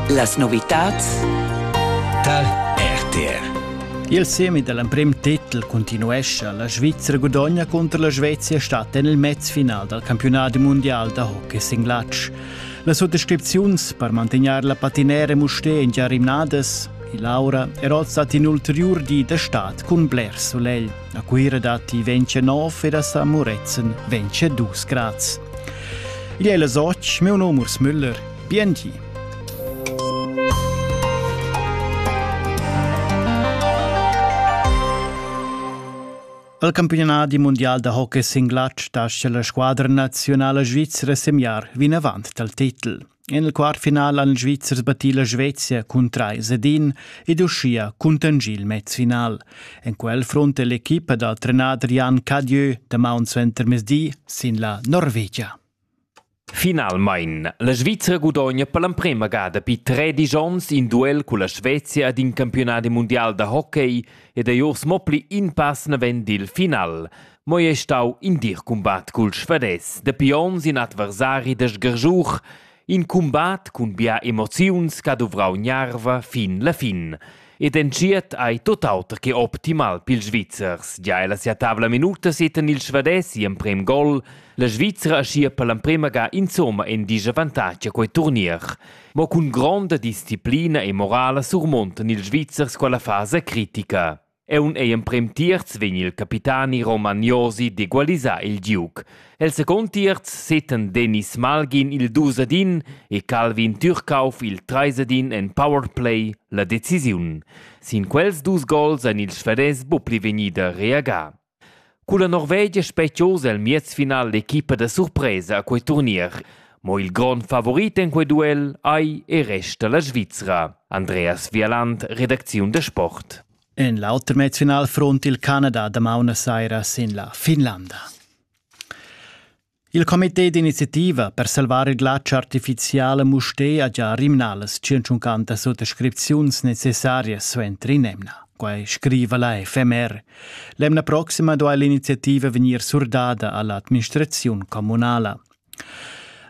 Las novitads tar RTR. Il semi dall'emprem titel continuescha. La Svizzera gudogna contro la Svezia stat en il mezfinal dal campionat mondial da hockey sin glatsch. Las suttascripziuns per mantegnar la patinera Musté in già rimnadas, il Laura era stata in ulteriur di da stad cun bler solegl. A Cuira datti ventsche nov ed a San Murezzan ventsche dus grads. Gli è la soc, mio nome Urs Müller. Biengi! Al campionadi mondial da hockey singlatsch lascia la squadra nazionala svizra semiar vinavant dal titel. En il quart final han ils Svizzers battì la Svezia cun trais ed in ed uschia cuntengì il mezfinal. En quel frunta l'equipa dal trenader Jan Cadieu damaun suentermezdi sin la Norvegia. Finalmein, la Svizra gudogna per l'emprema gada pi tredic onns in duel con la Svezia ad in campionat mundial da hockey ed ei urs mo pli in pass naven dil final. Mo ei ei stau in dir cumbat cul Svadès. Dapi onns in adversari da sgarschur, in cumbat cun bia emoziuns che ha duvrau gnarva fin la fin. Ed entschiet ei tot auter che optimal pils Svizzers. Gia ella sia tavla minuta setan il Svadès gl'emprem gol. La Svizra aschia per l'emprema ga insomma in disavantatg a quei turnier. Mo cun gronda disciplina e morala surmontan ils Svizzers quella fasa critica. Aunc ei emprem tierz vegn il capitani Roman Josi d'egualisar il giug. El second tierz seten Dennis Malgin il dusadin e Calvin Türkauf il treisadin en powerplay la decisiun. Sin quels dus gols ein ils Svedès buca pli vegnida reagà. Culla Norvegia spetgiosa el miez final l'equipa da surpresa a quei turnier. Mo il grond favorit en quei duel ei e resta la Svizra. Andreas Vialand, redacziun da sport. En l'auter mezfinal front il Canada damaun saira sin la Finlanda. Il comité d'iniziativa per salvar il glatsch artificial a Mustér ha già rimnà las 150 suttascripziuns necessarias suenter in'emna. Quai scriva la FMR. L'emna proxima duai l'iniziativa vegnir surdada a l'administraziun communala.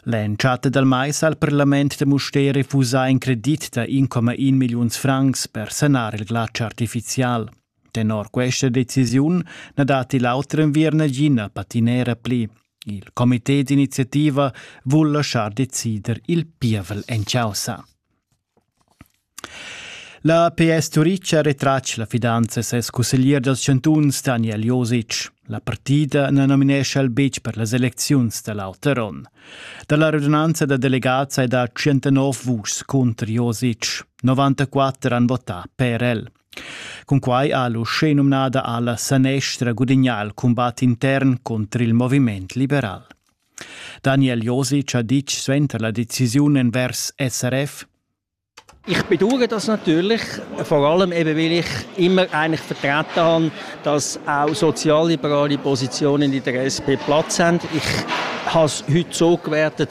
L'entschatta dal mais ha il parlament da Mustér refusà in credit da 1,1 milliuns francs per sanar il glatsch artificial. Tenor questa decisiun na datti l'auter enviern nagina patinera pli. Il comité d'iniziativa vul laschar decider il pievel en causa. La PS Turic ha retratg la fidanza a ses cusseglier dals chantuns Daniel Josic. La partida na nominescha el betg per las elecziuns da l'auter onn. Da la radunanza da delegats hai dà 109 vuschs cunter Josic. 94 han votà per el. Cunquai ha l'uschenumnada alla sanestra gudignà il cumbat intern contr il moviment liberal. Daniel Josic ha ditg suenter la decisiun envers SRF ich bedauere das natürlich, vor allem eben, weil ich immer eigentlich vertreten habe, dass auch sozialliberale Positionen in der SP Platz haben. Ich habe es heute so gewertet,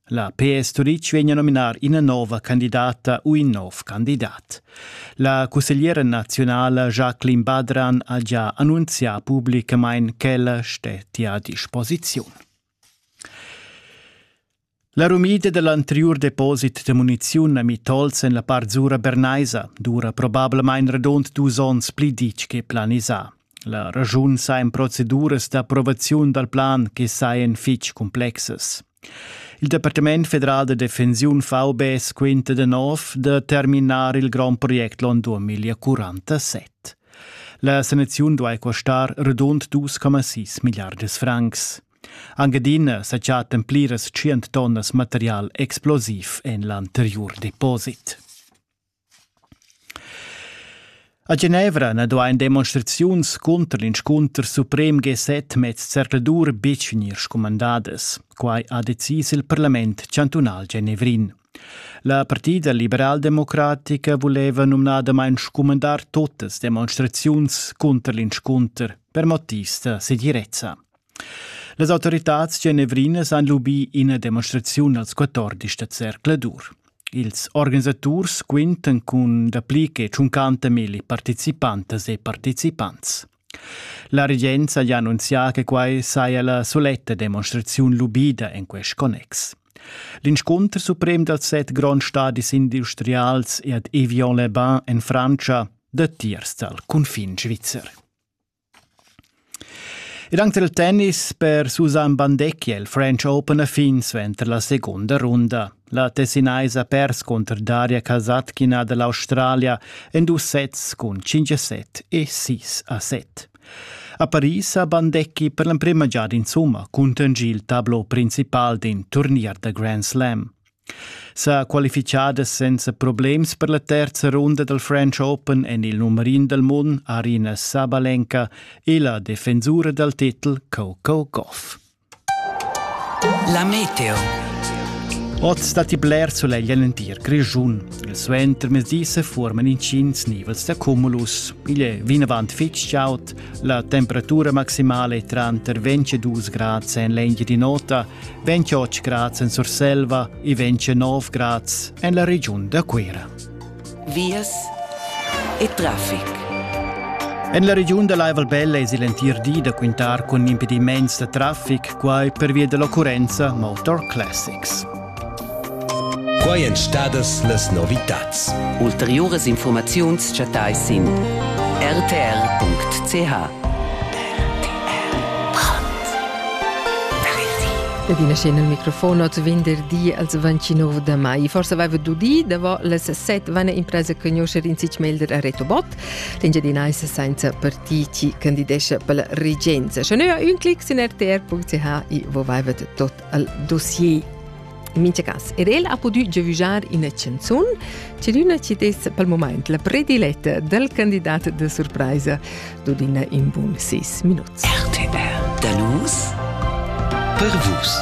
La PS Turitg vegn a nominar ina nova candidata u in nov candidat. La cussegliera nazionala Jacqueline Badran ha già annunzià pubblicamain ch'ella stettia a disposiziun. La rumida dell'anterior deposit de muniziun a Mitolz en la part zura bernaisa dura probablamain radund dus onns pli ditg che planisà. La raschun sajan proceduras d'approvaziun dal plan che sajan fitg cumplexas. Il Departament federal da defensiun VB quinta da nov da terminar il grond project l'on 2047. La sanaziun duai costar radund 2,6 milliards francs. Anc adina sa chattan pliras tschient tonnas material explosiv en l'anteriur deposit. A Genevra na duain demonstraziuns cunter l'inscunter suprem G7 mez zercladur betg vegnir scumandadas. Quai ha decis il parlament chantunal genevrin. La partida liberaldemocratica vuleva numnadamain scumandar tuttas demonstraziuns cunter l'inscunter per motivs da segirezza. Las autoritads genevrinas han lubì ina demonstraziun als 14 da zercladur. Ils organisaturs quintan cun dapli che tschuncanta milli participantas e participants. La regenza ha annunzià che quai saja la soletta demonstraziun lubida en quest connex. L'inscunter suprem dals set gronds stadis industrials e ad Evian-les-Bains en Frantscha dattiers dal cunfin svizzer. Ed anc dal tennis per Susanne Bandecchi è il French Open a fin suenter la segunda runda. La Tessinaisa ha pers cunter Daria Kasatkina da l'Australia en dus sets cun 5 a 7 e 6 a 7. A Paris ha Bandecchi per l'emprima giada insumma cuntegni il tablo principal d'in turnier da Grand Slam. sa qualifichadas senza problems per la terza runda dal French Open en il numerin dal mund Arina Sabalenka e la defensura dal titel Coco Goff. La meteo. Oz datti bler sulegl l'entir Grischun. Il suentermezdi se forman intgins nivels da cumulus. Igl è vinavant fitg chaud august. La temperatura maximala è tranter 22 grads en l'Engiadi Nota, 28 grads en Surselva e 29 grads en la regiun da Cuira. Vias e traffic. En la regiun da Laival Belle es l'entir di da quintar cun impediments da traffic, quai pervia dell'occurrenza Motor Classics. Quai èn stadas las novitads. Ulteriuras infurmaziuns chattais sin rtr.ch. E din scena il microfon oz venderdi als 29 da mai. Forse aveva d'udì, davanti les set venne impresa conoscere in sich melder a Reto Bott, l'engiadinais senza partiti candidesce per la regenza. Schon ha un clic in rtr.ch e voi vavet tot al dossier. In mincha cas, er el ha pudü giavüschar ina chanzun, ch'üna ci dess pel moment la prediletta dal candidat da surpraisa d'udina in bun 6 minuts. RTR. Da nus per vus.